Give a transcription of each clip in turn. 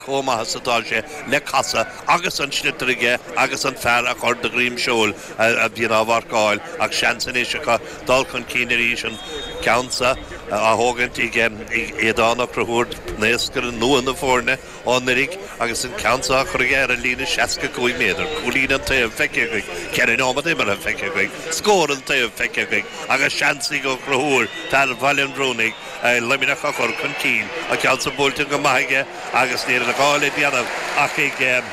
chomh maith is atá sé le casadh agus an sliotar aige agus an fear a chur de dhroim seoil a bhíonn á mharcáil ach seans anois acu dul chun cinn arís, an ceann seo á thógaint ag Aodán Ó Conchúir, naoscaire nua na foirne ó anuraidh agus an ceann seo á chur aige ar an líne seasca cúig méadar. Cúilín an taobh feicthe againn, ceithre nóiméad imeartha feicthe againn, scór an taobh feicthe againn agus seans ag Ó Conchúir, fear Bhaile an Bhrúnaigh, Luimneach a chur chun cinn. An ceann san buailte go maith aige agus níl aon ghá le déanamh ach ag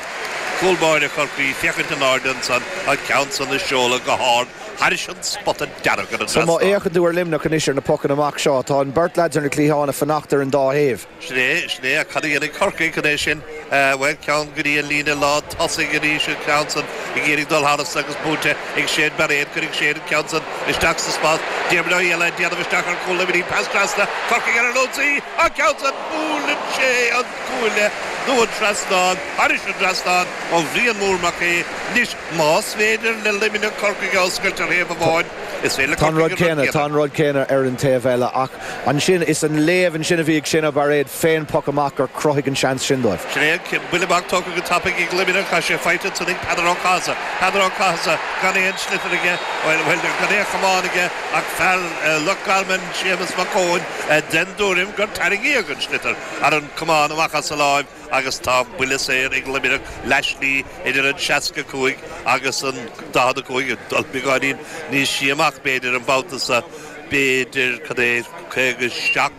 cúl báire Chorcaí féachaint in airde ansan, an ceann san ag seoladh go hard thairis an spota dearg ar an trasnán. Má fhéachann tú ar Luimneach anois ar na pocanna amach seo, tá an beirt leaid ar na cliatháin ag fanacht ar an dá thaobh. Sin é, sin é, ach cad a dhéanfaidh Corcaigh chun é sin Bhuel, ceann go dtí an líne lán tosaigh arís an ceann san ag iarraidh dul thairis agus bainte ag Shane Bairéad. Cuirfidh Shane an ceann san isteach sa spás. Diarmaid Ó hÉalaithe ag déanamh isteach ar chúl Luimnigh. Pas trasna, Corcaigh ar an ionsaí. An ceann san, buaileann sé an cuaille nó an trasnán, thairis an trasnán ó Bhrian Mór Mac Aoidh. Anois, más féidir le Luimneach Corcaigh a oscailt ar thaobh amháin, is féidir le Corcaigh an rud céanna a dhéanamh. ansin. Is an léamh ansin a bhí ag Shane Bairéad fén bpoc amach gur chruthaigh an seans sin dóibh. Sin é an cinneadh. Buille amach tógtha go tapaidh ag Luimneach tá sé faighte ansin ag Peadar Ó Cathasaigh. Peadar Ó Cathasaigh gan aon sliotar aige, bhuel, bhuel, gan aon chamán aige ach fear Loch Garman, Séamus Mac Eoin, den dtuairim gur tarraingíodh an sliotar thar an camán amach as a láimh. agus tá an buille saor ag Luimneach leathslí idir an 65 agus an 45 ag dul beagáinín níos sia amach b'fhéidir an babhta seo, b'fhéidir, cad é, 57,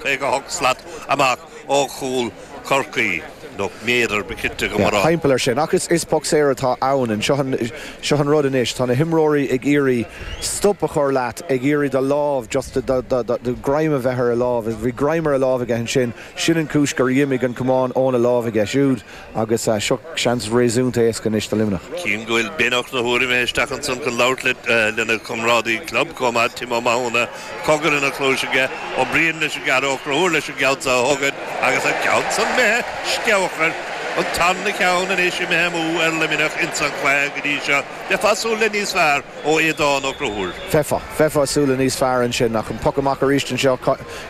58 slat amach ó chúl Chorcaí, nó méadar, ba chirte dom a rá. Timpeall air sin. Ach is poc saor atá ann and seo an rud anois, tá na himreoirí ag iarraidh stop a chur leat, ag iarraidh do lámh just, greim a bheith ar a lámh, bhí greim ar a lámh aige ansin, Sin an chúis gur dh'imigh an camán óna láimh aige siúd agus seo seans réasúnta éasca anois do Luimneach. Tchím go bhfuil Ben Ó Conchúir imithe isteach ansan chun labhairt le lena chomrádaí club chomh maith, Tim Ó Mathúna, cogar ina chluais aige. Ó Briain leis an gceann, Ó Conchúir leis an gceann seo a thógaint agus an ceann san imithe sceabhach air. An tarna cheann anois imithe amú ar Luimneach insan cluiche go dtí seo. Bheifeá súil le níos fearr ó Aodán Ó Conchúir. Bheifeá. Bheifeá súil le níos fearr ansin ach an poc amach aríst anseo.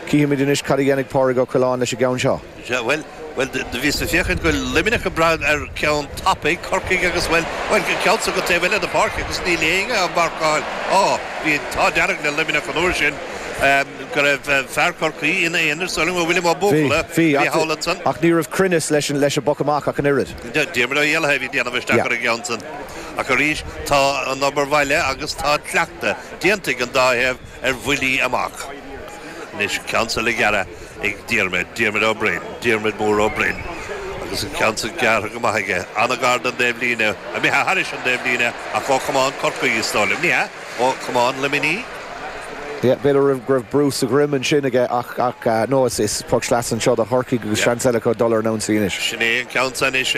Cífimid anois cad a dhéanfaidh Pádraig Ó Coileáin leis an gceann seo. Sea, bhuel, bhuel, do bhíos ag féachaint go bhfuil Luimneach ag brath ar cheann tapaidh Corcaigh agus, bhuel, bhuel, an ceann san go taobh eile den pháirc agus níl éinne á mharcáil. Á, bhí an t-ádh dearg le Luimneach an uair sin go raibh fear Chorcaí ina aonar sula raibh William Ó Buachalla, thall ansan. Bhí, ach ní raibh cruinneas leis an bpoc amach ach an oiread. Diarmuid Ó hÉalaithe a bhí ag déanamh isteach ar an gceann san. Ach arís, tá an obair bhaile agus tá an cleachtadh déanta ag an dá thaobh. ar bhuillí amach. Anois an ceann so le gearradh ag Diarmaid, Diarmaid Ó Broin, Diarmaid Mór Ó Broin, agus an ceann so gearrtha go maith aige, an-ghar don dtaobhlíne, imithe thairis an dtaobhlíne ach ó chamán Chorcaí, is dóigh liom. Ní hea, ó chamán Luimní. B'fhéidir go raibh brú sa dhroim ansin aige ach, no, is poc sleasa anseo do Chorcaigh agus seans eile acu dul ar an ionsaí anois. Sin é an ceann so anois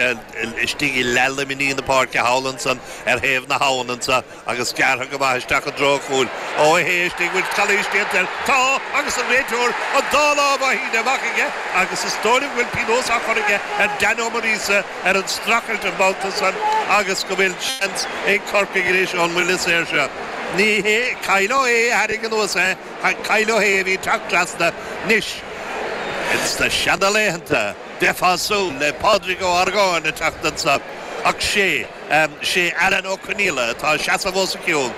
istigh i leath Luimní na páirce thall ansan ar thaobh na habhann anso. agus gearrtha go maith isteach i dtreo an chúil, Ó hAodha istigh, bhfuil calaois déanta air, tá, agus an réiteoir an dá lámh á shíneadh amach aige agus is dóigh liom go bhfuil pionós á chur aige ar Dan Ó Muiríosa ar an streachailt an babhta san agus go bhfuil seans ag Corcaigh anois ón mbuille saor seo. Ní hé Kyle Ó hAodha a tharraing anuas é ach Kyle Ó hAodha a bhí ag teacht trasna anois ins na seana laethanta, bheifeá ag súil le Pádraig Ó hArgáin ag teacht anso ach sé. 'Sé Alan Ó Conghaile atá ag seasamh os a chionn.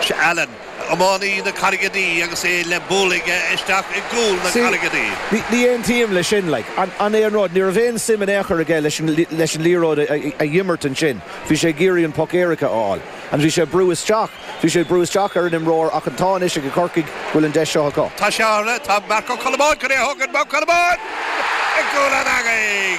'Sé Alan iománaí na Carraige Duibhe agus é le bualadh aige isteach i gcúl na Carraige Duibhe. Ní aontaím le sin, like. An é an rud, ní raibh aon suim in aon chor aige leis an liathróid a dh'imirt ansin, bhí sé ag iarraidh an poc éirice a fháil and bhí sé ag brú isteach. Bhí sé ag brú isteach ar an imreoir ach an t-ádh anois ag Corcaigh go bhfuil an deis seo acu. Tá sé ann, tá Mark Ó Colmáin chun é a thógaint, Mark Ó Colmáin i gcúl an eangaigh!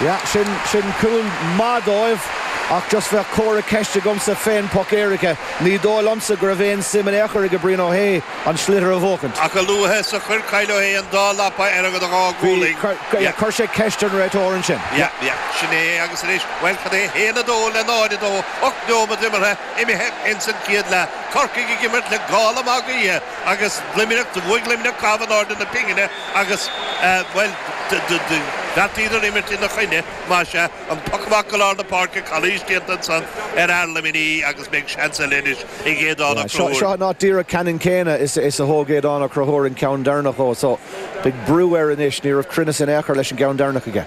Yeah, sin, sin cúl maith dóibh ach just bheadh comhartha ceist agamsa fén poc éirice. Ní dóigh liomsa go raibh aon suim in aon chor ag Brian Ó hAodha an sliotar a bhuachaint. Ach a luaithe is a chuir Kyle Ó hAodha an dá lapa ar an dá ghualainn, chuir, yeah, chuir sé ceist ar an réiteoir ansin. Yeah, yeah, sin é é agus anois, bhuel, cad é? 1-2 le 0-2. Ocht nóiméad imeartha imithe ins an chéad leath. Corcaigh ag imirt le gála Mag Aodha agus Luimneach. Do bhuaigh Luimneach caitheamh in airde na pingine agus, bhuel, bheartaíodar imirt ina choinne, más ea. An poc amach go lár na páirce, calaois déanta ansan ar fhear Luimní agus beidh seans eile anois ag Aodán Ó Conchúir. Seo an áit díreach ceannann céanna is a thóg Aodán Ó Conchúir an ceann deireanach dhó so beidh brú air anois. Ní raibh cruinneas in ao' chor leis an gceann deireanach aige.